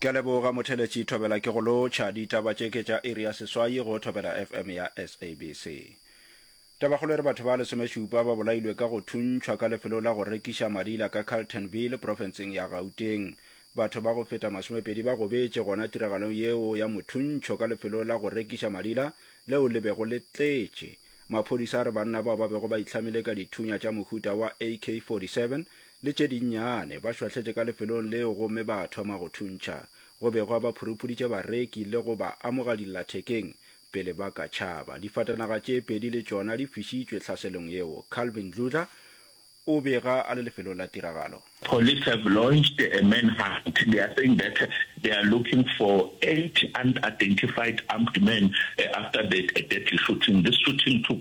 Ke a leboga Motheletši Thobela ke go lotšha. Ditaba tše ke tša iri ya seswai go Thobela FM ya SABC. Tabakgolo e re batho ba lesomešupa ba bolailwe ka go thuntšhwa ka lefelo la go rekiša madila ka Carltonville, profenseng ya Gauteng. Batho ba go feta masomepedi ba gobetše gona tiragalong yeo ya mothuntšho ka lefelo la go rekiša madila leo le bego le tletše. Maphodisa a re banna bao ba bego ba itlhamile ka dithunya tša mohuta wa AK-47 le tše dinnyane, ba šwahletše ka lefelong leo gomme ba thoma go thuntšha. Go begwa ba phurupuditše bareki le go ba amoga dillathekeng pele ba ka tšhaba. Difatanaga tše pedi le tšona di fišitšwe tlhaselong yeo. Calvin Dludla o bega a le lefelong la tiragalo. Police have launched a manhunt. They are saying that they are looking for eight unidentified armed men after the deadly shooting. This shooting took.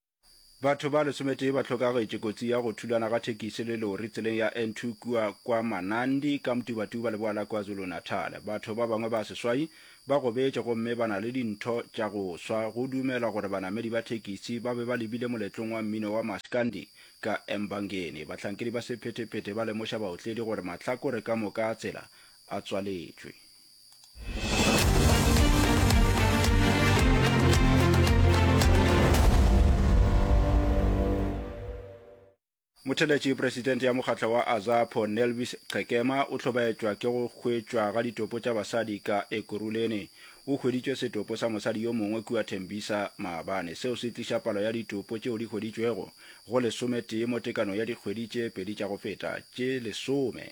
Batho ba lesometee ba hlokagetše kotsi ya go thulana ga thekisi le lori tseleng ya N2 kua kwa Manandi ka Mtubatuba leboa la KwaZulu-Natal. Batho ba bangwe ba seswai ba gobetše gomme ba na le dintho tša go swa. Go dumelwa gore banamedi ba thekisi ba be ba lebile moletlong wa mmino wa Maskandi ka Embangeni. Bahlankedi ba sephetephete ba lemoša baotledi gore mahlakore ka moka a tsela a tswaletšwe. motheletši presidente ya mokgatlo wa azapo nelvis qhekema o hlobaetšwa ke go hwetšwa ga ditopo tša basadi ka ekurulene o hweditšwe setopo sa mosadi yo mongwe kua thembisa maabane seo se tliša palo ya ditopo tšeo di hweditšwego go lesometee mo tekano ya dikgwedi tše pedi tša go feta tše lesome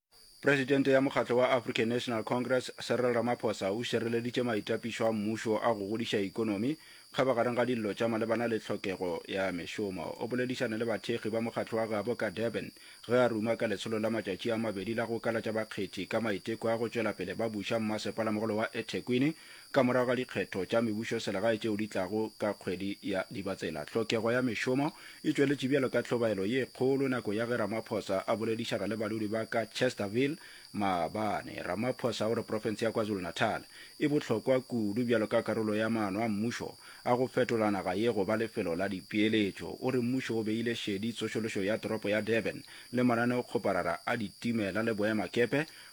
Presidente ya mokgatlo wa African National Congress, Cyril Ramaphosa o šireleditše maitapišo a mmušo a go godiša ekonomi, kgabagareng ga dillo tša malebana le tlhokego ya mešomo. O boledišane le bathekgi ba mokgatlo wa gabo ka Durban ge a ruma ka letsholo la matšatši a mabedi la go kalatša bakgethi ka maiteko a go tšwela pele ba buša mmasepala mogolo wa eThekwini Ka morago ga dikgetho tša mebušoselegae tšeo di tlago ka kgwedi ya Dibatsela, tlhokego ya mešomo e tšweletše bjalo ka tlhobaelo ye kgolo nako ya ge Ramaphosa a boledišana le badudi ba ka Chesterville maabane. Ramaphosa o re profense ya KwaZulu-Natal e bohlokwa kudu bjalo ka karolo ya maano a mmušo a go fetola naga ye go ba lefelo la dipeeletšo. O re mmušo o beile šedi tsošološo ya toropo ya Durban le mananeo-kgoparara a ditimela le boemakepe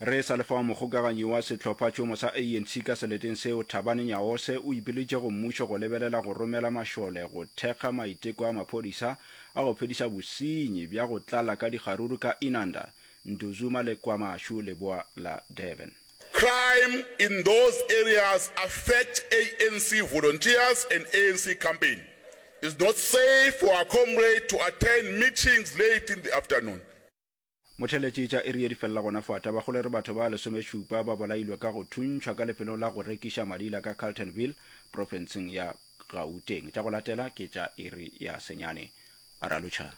Re sa le fao mogokaganyi wa sehlophatšhomo sa ANC ka seleteng seo, Thabani Nyaose o ipiletše go mmušo go lebelela go romela mašole go thekga maiteko a maphodisa a go phediša bosenyi bja go tlala ka dikgaruru ka Inanda, Ntuzuma le KwaMashu leboa la Durban. Crime in those areas affect ANC volunteers and ANC campaign. It's not safe for our comrade to attend meetings late in the afternoon. Motheletši tša iri ye di felela gona fo a taba go le re batho ba lesomešupa ba bolailwe ka go thuntšhwa ka lefelong la go rekiša madila ka Carltonville, profenseng ya Gauteng. Tša go latela ke tša iri ya senyane. Ra lutšha.